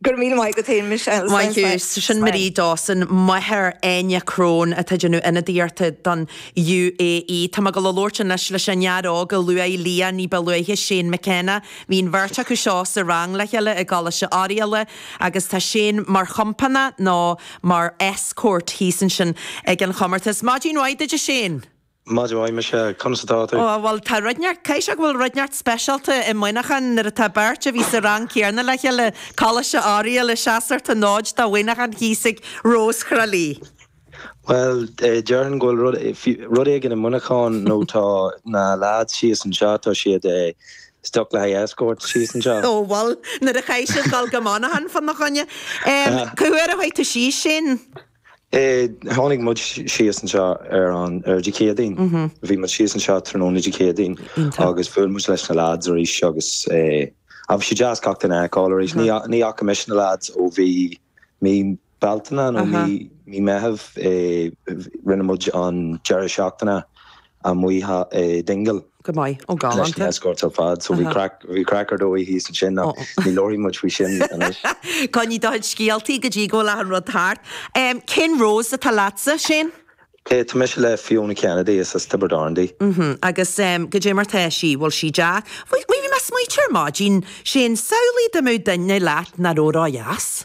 Go raibh míle maith agat féin Michelle. Maith thú. Sin Marie Dawson, máthair Áine Crone, atá ag déanamh ionadaíochta don UAE. Tá mé ag gabháil a labhairt anois leis an fhear óg a luaigh Leah ní ba luaithe, Shane McKenna. Bhí an bheirt acu seo sa rang le chéile i gColáiste Oiriall agus tá Shane mar chompánach nó mar escort thíos ansin ag an chomórtas. Maidin mhaith duit a Shane! Maidin mhaith duit Michelle, conas atá tú? Ó bhuel, tá rud inteacht, caithfidh sé go bhfuil rud inteacht speisialta i Muineachán nuair atá beirt a bhí sa rang céarna le chéile, i gColáiste Oiriall ag seasamh an fhóid do Mhuineachán thíos ag Rós Thrá Lí. Bhuel, déarfainn go bhfuil rud, rud éigin i Muineachán nó tá na lads síos anseo, tá siad stuck le haghaidh escort síos anseo. Ó bhuel, nuair a chaith sibh dul go Monaghan fána choinne, cá huair a chuaigh tú síos Shane? Tháinig muid síos anseo ar an Dé Céadaoin. Bhí muid síos anseo tráthnóna Dé Céadaoin agus bhuail muid leis na lads arís agus bhí sé deas gach duine a fheiceáil arís. Ní fhaca mise na lads ó bhí mí Bealtaine nó mí Meitheamh. Rinne muid an deireadh seachtaine amuigh i Dingle. Go maith. Ó, leis na galánta. escorts ar fad, so bhí Aha. craic, bhí craic ar dóigh thíos ansin ach Ó. ní labharfaidh muid faoi sin anois. Coinnigh do chuid scéaltaí go dtí go bhfuil achan rud thart. Em, cén Rose atá leatsa, Shane? Eh, tá mise le Fiona Kennedy, is as Tiobraid Árann di. Hm, agus em, goidé mar tá sí, bhfuil sí deas? Bhí, bhí mé ag smaoiteamh ar maidin, Shane, samhlaigh dá mbeadh duine leat nach raibh ródheas?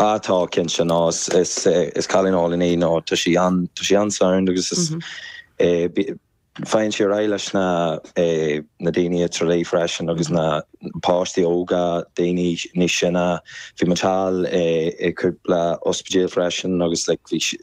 Á tá, cinnte. No, is, is, is cailín álainn í, no, tá sí an, tá sí an-sound agus is eh, bí, faigheann sí ar aghaidh leis na eh, na daoine i Tralee freisin agus na páistí óga, daoine níos sine. Bhí muid thall eh, i cúpla ospidéal freisin agus like, bhí, si-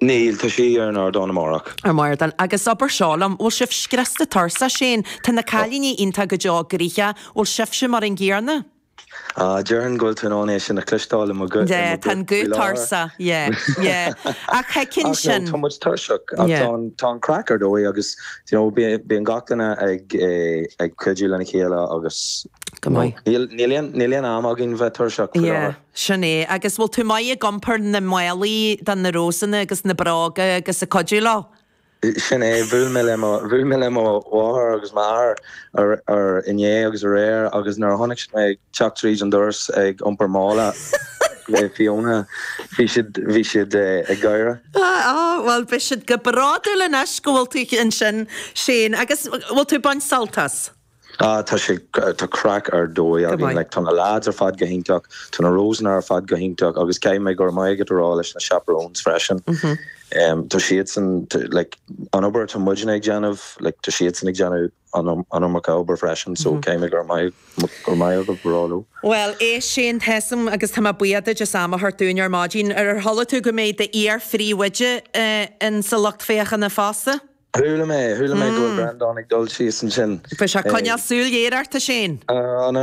Níl, tá sí ar an ardán amárach. Ar an ardán agus abair seo liom, bhfuil sibh scriosta tuirseach, Shane? Tá na cailíní iontach go deo gnoitheach, bhfuil sibhse mar an gcéarna? Ah, déarfainn go bhfuil tú in ann é sin a cloisteáil i mo guth Yeah, tá an guth tuirseach, yeah, yeah, ach thuigfinn sin. Ach no, tá muid tuirseach, ach tá an craic ar dóigh agus, you know, bíonn gach duine ag, eh, ag cuidiú lena chéile agus, go maith, níl aon am againn bheith tuirseach. Yeah. Sin é. Agus bhfuil tú maith ag iompar na málaí do na Rósanna agus na bróga agus ag cuidiú leo? Sin é. Bhuail mé le mo, bhuail mé le mo mháthair agus m'athair ar, ar, inné agus aréir agus nuair a chonaic siad mé ag teacht tríd an doras ag iompar mála le Fiona bhí siad, bhí siad ag gáire. Ah á, bhuel beidh siad go bródúil anois go bhfuil tú ansin Shane. Agus bhfuil tú ag baint sult as? Ah tá sé, tá craic ar dóigh againn, like tá na lads ar fad go hiontach, tá na Rosanna ar fad go hiontach agus caithfidh mé go raibh maith agat a rá leis na chaperones freisin. Em, tá siadsan, t- like an obair atá muidne ag déanamh, like tá siadsan ag déanamh an iom- an iomarca obair freisin, so caithfidh mé go raibh maith, go raibh maith agat a rá leo. Bhuel, éist Shane, tá's agam agus tá mé buíoch duit as am a thabhairt dúinn ar maidin. Ar chuala tú go mbeidh d'iar-phríomhoide eh, in sa lucht féachana fosta? Chuala mé, chuala mé go mbeidh Breandán ag dul síos ansin. Beidh sé ag coinneáil súil ghéar ort, a Shane. Á, no, no.